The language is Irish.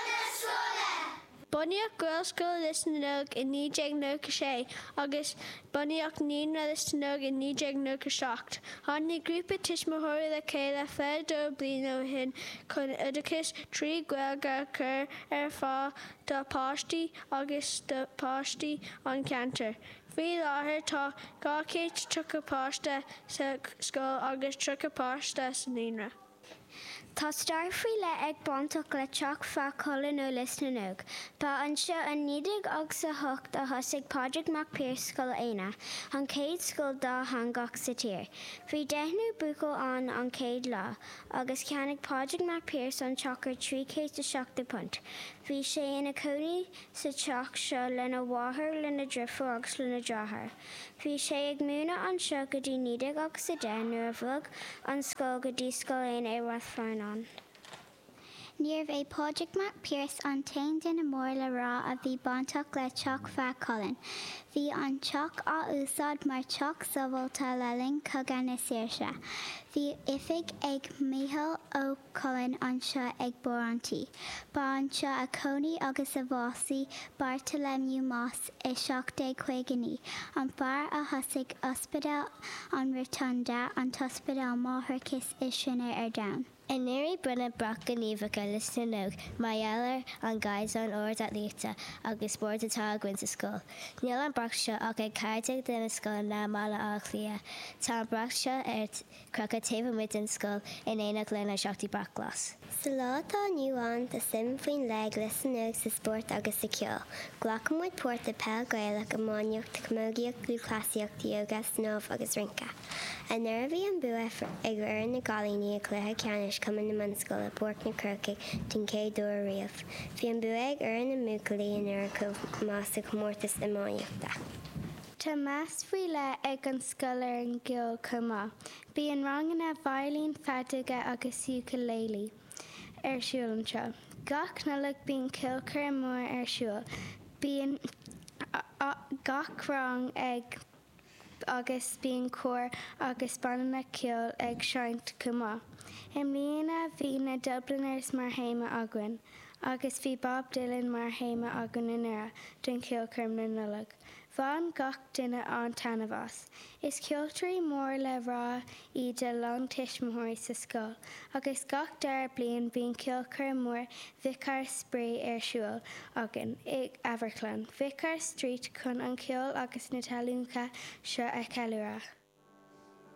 na scoile. Bunaíodh Gaelscoil Lios na nÓg i 1996 agus bunaíodh Naíonra Lios na nÓg i 1997. Tháinig grúpa tuismitheoirí le chéile 22 bliain ó shin chun oideachas trí Ghaeilge a chur ar fáil dá páistí agus do pháistí an cheantair. Faoi láthair tá 230 páiste sa scoil agus 30 páiste sa Naíonra. Tá stair faoi leith ag bainteach le Teach Feadha Cuilinn nó Lios na nÓg. Ba anseo i 1908 a thosaigh Pádraig Mac Piarais Scoil Éanna, an chéad scoil dátheangach sa tír. Bhí deichniúr buachaill ann an chéad lá agus cheannaigh Pádraig Mac Piarais an teach ar £370. Bhí sé ina chónaí sa teach seo lena mháthair, lena dheirfiúr agus lena dheartháir. Bhí sé ag múineadh anseo go dtí 1910 nuair a bhog an scoil go dtí Scoil Éanna i Ráth Fearnáin. Níorbh é Pádraig Mac Piarais an t-aon duine mór le rá a bhí bainteach le Teach Feadha Cuilinn. Bhí an teach á úsáid mar theach sábháilte le linn Chogadh na Saoirse. Bhí oifig ag Micheál Ó. Coileáin anseo ag barr an tí. Ba anseo a chónaigh agus a bhásaigh Bartholomew Mosse i 1759, an fear a thosaigh Ospidéal an Rotunda, an t-ospidéal máithreachais is sine ar domhan. Anuraidh bronnadh brat gníomhach ar Lios na nÓg mar gheall ar an gcaighdeán ard aclaíochta agus spóirt atá againn sa scoil. Níl an brat seo ach ag 14 de na scoileanna i mBaile Átha Cliath, tá an brat seo ar. crochadh taobh amuigh den scoil in éineacht lenár seachtú brat glas. Sa lá atá inniu ann, tá suim faoi leith ag Lios na nÓg sa spórt agus sa cheol. Glacann muid páirt i peil Gaelach, iománaíocht, camógaíocht, lúthchleasaíocht, yoga, snámh agus rince. Anuraidh bhí an bua ag fhoireann na gcailíní i gcluiche ceannais Cumann na mBunscol i bPáirc na Crócaigh den chéad uair riamh. Bhí an bua ag fhoireann na mbuachaillí anuraidh chomh maith sa chomórtas iománaíochta. Tá meas faoi leith ag an scoil ar an gceol chomh maith. Bíonn ranganna veidhlín, feadóga agus ukulele ar siúl anseo. Gach Nollaig bíonn ceolchoirm mór ar siúl. Bíonn gach rang ag agus bíonn cór agus banna ceoil ag seinnt chomh maith. I mbliana bhí na Dubliners mar théama againn. Agus bhí Bob Dylan mar théama againn anuraidh don cheolchoirm na Nollag. Bhain gach duine an-taitneamh as. Is ceoltóirí mór le rá iad a lán tuismitheoirí sa scoil agus gach dara bliain bíonn ceolchoirm mhór Vicar Spraoi ar siúl againn i Amharclann Vicar Street chun an ceol agus na tallannacha seo a cheiliúradh.